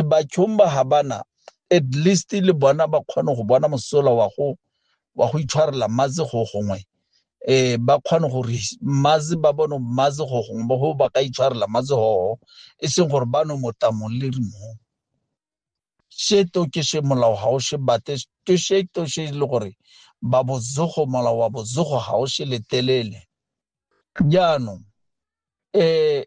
batšhong ba ga bana at least le bona ba kgone go bona mosola wa go wa go itshwarela mmaze go gongwe eh ba kgone gore mmaze ba bone mmaze go gongwe ba go ba ka itshwarela mmaze go e seng gore ba no mota mo le mo se to ke se molao ga o se bate to se to se le gore ba bozogo molao wa bozogo ga o se letelele jaanong eh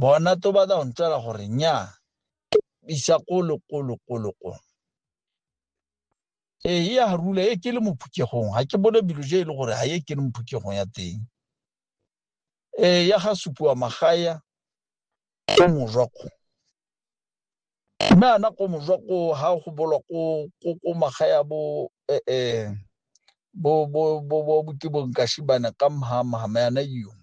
bona to batla go ntswela gore nnyaa isa kolo kolo kolo kolo ee e a rula e ke le mo phukegong ga ke bone bilo je e le gore ga e ke le mo phukegong ya teng ee ya ga supiwa magaya ko mojwako mme ana ko mojwako ga go bolwa ko magaya bo ee bo bo bo bo bo ke bonkashibane ka mhamhama yana yone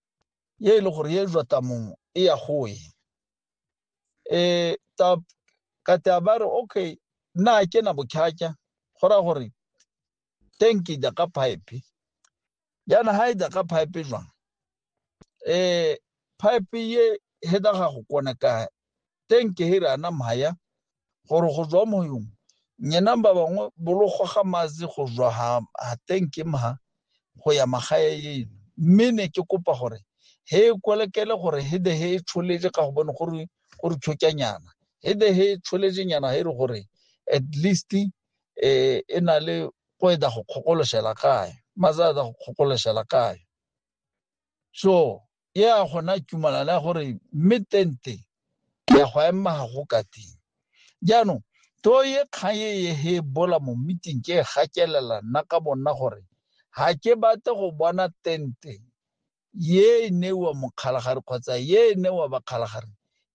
ye e le gore ye jwa tamong e ya go e eh ta ka ta ba re okay nna ke na bokhakya go ra gore tank e ka pipe yana ha e ka pipe jwang eh pipe ye he da ga go kona ka teng ke here ana maya gore go jwa moyong nyena ba bangwe bologo ga mazi go jwa ha ha teng ke mha go ya magae yeno mme ne ke kopa gore he kolekele gore he de he tsholetse ka go bone gore gore tshokanyana he de he tsholetse nyana he re gore at least eh e na le go eda go kgokoloshela kae mazada go kgokoloshela kae so e a gona tumalana gore mme tente ya go ema ga go ka teng jaanong to ye kgang e ye he bola mo meeting ke e gakelela nna ka bonna gore ga ke bate go bona tente ye e newa mokgalagare kgotsa ye e newa bakgalagare